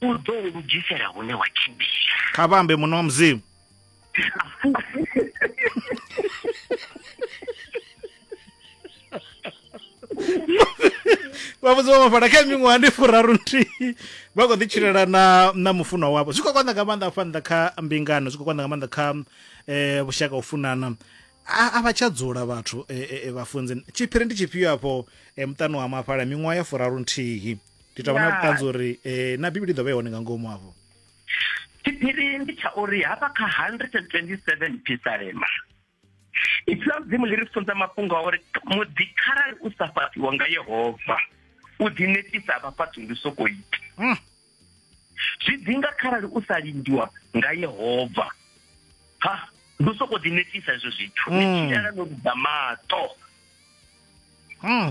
u ḓo u lugisela hune wa tshimbila kha vhambe muṋe wa mudzimu vhavhudzi vha mafhala kha miṅwaha ndi furaru nthihi vha khou ḓitshilela na na mufunwa wavho zwi khou konḓa nga maanḓa afha nnḓa kha mbingano zwi khou konḓa nga maanḓa kha um vhushaka u funana a vha tsha dzula vhathu eh, eh, vhafunzi tshiphiri ndi tshifhio afho muṱani wa mafhala miṅwaha ya furaru nthihi ndi tou vha na vhuṱanzi uri um na bivhili i ḓo vha i hone nga ngomu afho tshiphiri ndi tsha uri hafha kha 127 pisalema ipfi ḽa mudzimu ḽi ri funza mafhungo a uri muḓi kharali u sa fhaṱiwa nga yehova u ḓinetisa vha fhaṱi ndi soko ita hmm. zwi ḓi nga kharali u sa lindiwa nga yehova ha ndi u sokou ḓinetisa hezwo zwithu ni hmm. tshilala no luga maṱo hmm.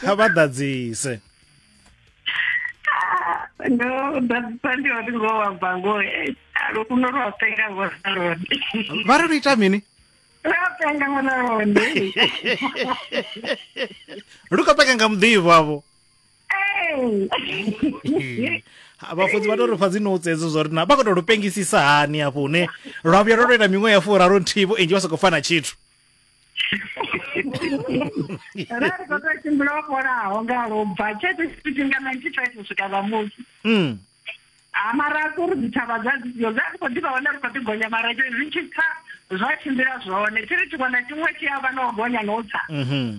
kha vha ḓadzise ndo ḓadzisa ndi uri ngo wa bva ngo eh, lufuno lwa penga ngo na lone vha ri lu ita mini lwa penga ngo na lone lu khou penga nga muḓivho avho vhafunzi vha to ri pfa dzi notes edzo zwo ri na vha khou to lu pengisisa hani afho hune lwa vhuya lwo to ita miṅwe ya furaru nthihi vho enzhi vha sokou fana tshithu rari ko to tshimbila o fholaho nga lwo bva tshe tsho tshifhinga ninety five u swika ṋamusi Mm. ha mara a uri dzithavha dza dzio dza ri khou ḓivha hone ri khou ḓi gonya mara tsho zwi tshi tsa zwa tshimbila zwone tshi ri tshiṅwe na tshiṅwe tshi a vha na u gonya na u tsa Mhm.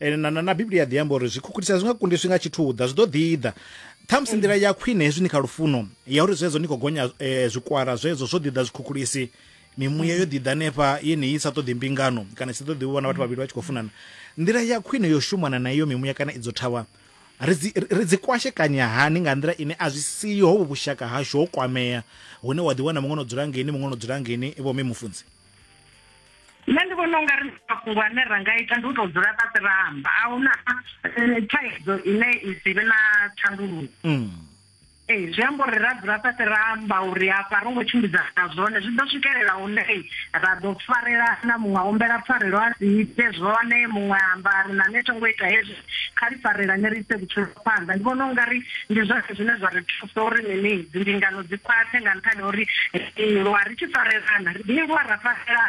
ene na, na, na biblia ḓi amba uri zwikhukhulisa zwi nga kundiswi nga tshithuḓa zwi ḓo ḓiḓa ṱhamusi nḓila ya khwine hezwi ni kha lufuno ya uri zwezwo ni khou gonya eh, zwikwara zwezwo zwo ḓiḓa zwikhukhulisi mimuya yo ḓiḓa nefha yeneyi sa ṱoḓi mbingano kana i sa ṱoḓi u vhona vhathu vhavhili vha tshi khou funana nḓila ya khwine yo shumana na iyo mimuya kana idzo thavha ri dzi- ri- ri dzi kwashekanya hani nga nḓila ine a zwi siho hovhu vhushaka hashu ho kwamea hune wa ḓiwana muṅwe no dzula ngeni muṅwe no dzula ngeni vho mme mufunzi nṋe ndi vhona ungari mafhungo ane ra nga ita ndi u to dzula fhasi ra amba a huna eh, thaidzo ine i si vhe na thandululo mm. ee eh, zwi amba uri ra dzula fhasi ra amba uri afha ro ngo tshimbidza na zwone zwi ḓo swikelela hune ra ḓo farela na muṅwe a humbela pfarelo a si ite zwone muṅwe amba ri na nṋe thongo ita hezwi kha ri farelane ri ise vhutshilo phanḓa ndi vhona ungari ndi zwone zwine zwa ri thusa uri mini dzi mbingano dzi khwaṱhe nga nṱhani ha uri ri lwa ri tshi farelana ri ḓi lwa ra farelana